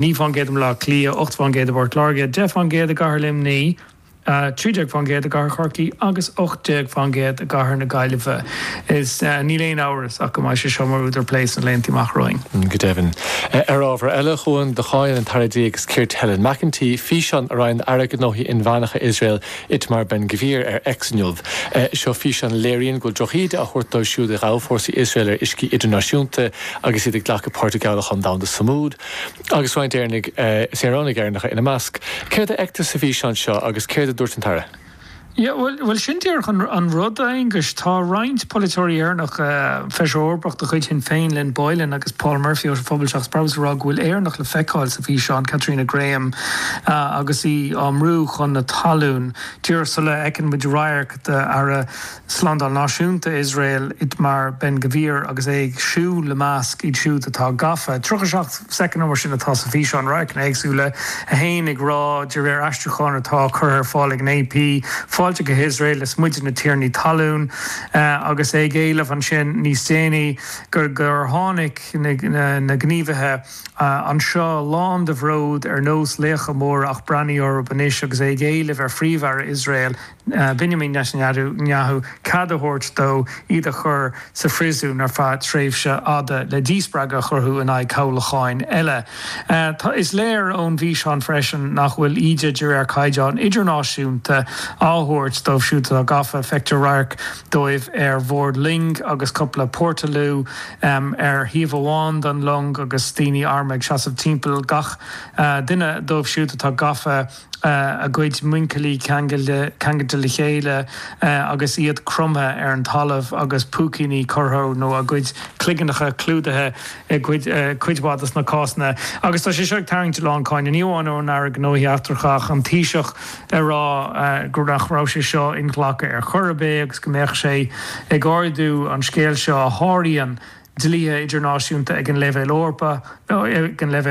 19 fán gcéad i mBleá Cliath, 8 fán gcéad i bPort Láirge, 10 fán gcéad i gCathair Luimní, 13 fán gcéad i gCathair Chorcaí agus 18 fán gcéad i gCathair na Gaillimhe. Is níl aon amhras ach go mbeidh sé seo mar údar plé sna laethanta amach romhainn. Go deimhin. Ar ábhar eile, a Chuain, do cháin an tAire Dlí agus Ceart Helen McEntee físeán a roinn an tAire Gnóthaí Inmheánacha Iosrael Itamar Ben-Gvir ar X inniu. Seo físeán a léiríonn go bhfuil drochíde á thabhairt dóibh siúd a ghabh fórsaí Iosrael ar uiscí idirnáisiúnta agus iad ag glacadh páirt i gcabhlachán domhanda Sumud. agus roinnt Éireannaigh, saoránaigh Éireannacha ina measc. Céard a fheictear sa bhfíseán seo agus céard a dúirt an tAire? Yeah, bhuel, bhuel, sin díreach an rud, a Aonghais. Tá roinnt polaiteoirí Éireannacha, Feisire Eorpach de chuid Shinn Féin, Lynn Boylan, agus Paul Murphy ó Phobal Seachas Brabús ag rá go bhfuil Éireannach le feiceáil sa bhfíseán, Caitríona Graham, agus í á mbrú chun na talún díreach sula fheiceann muid radharc d'Aire Slándáil Náisiúnta Iosrael Itamar Ben-Gvir agus é ag siúl i measc iad siúd atá gafa. 30 7 soicind nó mar sin atá sa bhfíseán, radharcanna éagsúla, é ag rá, de réir aistriúcháin atá curtha ar fáil ag an AP, Fáilte go hIosrael, is muide na tiarnaí talún. Agus é ag éileamh ansin níos déanaí gur gur tháinig na gníomhaithe anseo lán de bhród ar nós laochra móra ach breathnaigh orthu anois agus é ag éileamh ar Phríomh-Aire Iosrael, Binyamin Netanyahu cead a thabhairt dó iad a chur sa phríosún ar feadh tréimhse fhada le díspreagadh a chruthú in aghaidh cabhlacháin eile. Tá is léir ón bhfíseán freisin nach bhfuil íde de réir caighdeán idirnáisiúnta á tabhairt dóibh siúd atá gafa. Feictear radharc díobh ar bhord loing agus cupla portaloo ar thaobh amháin den long agus daoine armtha ag seasamh timpeall gach duine díobh siúd atá gafa. a gcuid muincillí ceang ceangailte le chéile agus iad cromtha ar an talamh agus púicíní curtha nó a gcuid cloigeannacha clúdaithe i gcuid mhaith de na cásanna agus tá sé seo ag tarraingt lán cáineadh, ní amháin ón Aire Gnóthaí Eachtracha ach an Taoiseach ag rá go nach raibh sé seo inghlactha ar chor ar bith agus go mbeadh sé ag ardú an scéal seo a sháraíonn dlíthe idirnáisiúnta ag an leibhéal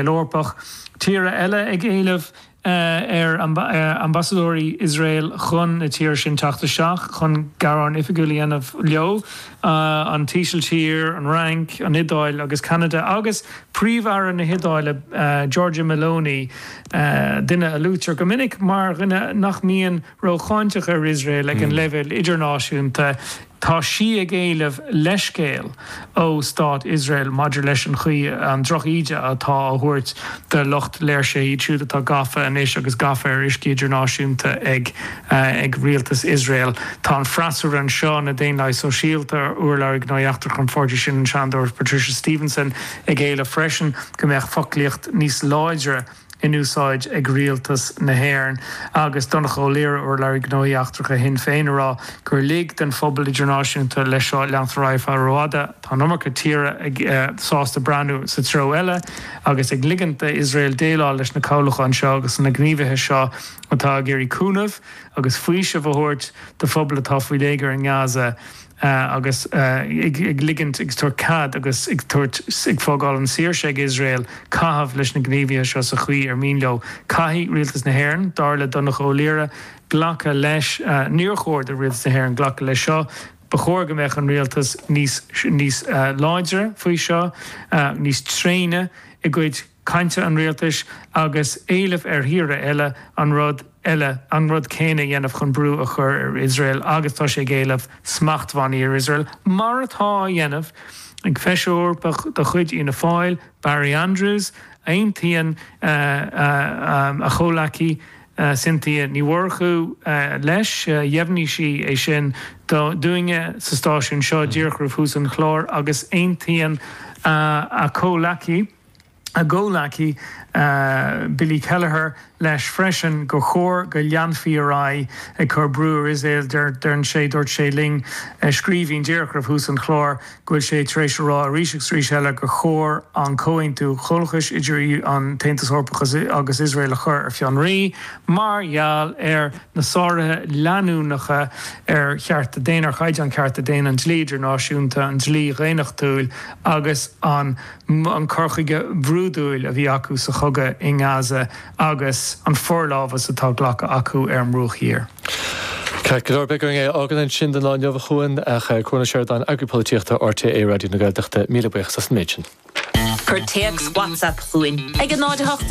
Eorpach, tíortha eile ag éileamh. ar ambasadóirí Iosrael chun na tíre sin teacht isteach chun gearán oifigiúil a dhéanamh leo, an Ísiltír, an Fhrainc, an Iodáil agus Ceanada, agus Príomh-Aire na hIodáile, Giorgia Meloni, duine a luaitear go minic mar dhuine nach mbíonn rócháinteach ar Iosrael ag an leibhéal idirnáisiúnta, tá sí ag éileamh leithscéal ó stát Iosrael maidir leis an chaoi, an droch-íde atá á thabhairt do lucht léirsithe, iad siúd atá gafa anois agus gafa ar uiscí idirnáisiúnta ag rialtas Iosrael. Tá an freasúra anseo, na Daonlathaigh Sóisialta, urlabhraí gnóthaí eachtracha an pháirtí sin, an Seanadóir Patricia Stephenson, ag éileamh freisin go mbeadh foclaíocht níos láidre, in úsáid ag Rialtas na hÉireann agus Donncha Ó Laoire, Urlabhraí Gnóthaí Eachtracha Shinn Féin ag rá gur lig an pobal idirnáisiúnta leis seo leanstan ar aghaidh rófhada. Tá an iomarca tíortha sásta breathnú sa treo eile agus ag ligint d'Iosrael déileáil leis na cabhlacháin seo agus na gníomhaithe seo atá ag iarraidh cúnamh agus faoiseamh a thabhairt do phobal atá faoi léigear i nGaza. agus ag ligint, ag tabhairt cead agus ag tabhairt, ag fágáil an saoirse ag Iosrael caitheamh leis na gníomhaithe seo sa chaoi ar mian leo. Caithfidh Rialtas na hÉireann, dar le Donncha Ó Laoire, glacadh leis. Níor chóir do Rialtas na hÉireann glacadh leis seo. Ba chóir go mbeadh an Rialtas níos, níos láidre faoi seo, níos tréine i gcuid. cainte an rialtais agus éileamh ar thíortha eile an rud eile, an rud céanna a dhéanamh chun brú a chur ar Iosrael agus tá sé ag éileamh smachtbhannaí ar Iosrael, mar atá á dhéanamh ag Feisire Eorpach de chuid Fhianna Fáil, Barry Andrews, aontaíonn a chomhleacaí Cynthia Ní Mhurchú leis, dheimhnigh sí é sin dúinne sa stáisiún seo díreach roimh thús an chláir agus aontaíonn a comhleacaí, a gcomhleacaí Billy Kelleher leis freisin gur chóir go leanfaí ar aghaidh ag cur brú ar Iosrael. Deir sé, dúirt sé linn i scríbhinn díreach roimh thús an chláir go bhfuil sé tar éis a rá arís agus arís eile gur chóir an comhaontú comhlachais idir an tAontas Eorpach agus Iosrael a chur ar fionraí mar gheall ar na sáruithe leanúnacha ar chearta daonna, ar chaighdeán cearta daonna, an dlí idirnáisiúnta, an dlí dhaonnachtúil agus an. an cur chuige brúidiúil a bhí acu sa chogadh i nGaza agus an forlámhas atá glactha acu ar an mBruach Thiar. Ceart go leor, beidh orainn é a fhágáil ansin don lá inniu a Chuain ach Cuan Ó Seireadáin, Eagraí Polaitíochta RTÉ Raidió na Gaeltachta, míle buíochas as an méid sin. Cuir téacs WhatsApp chugainn ag 08 18.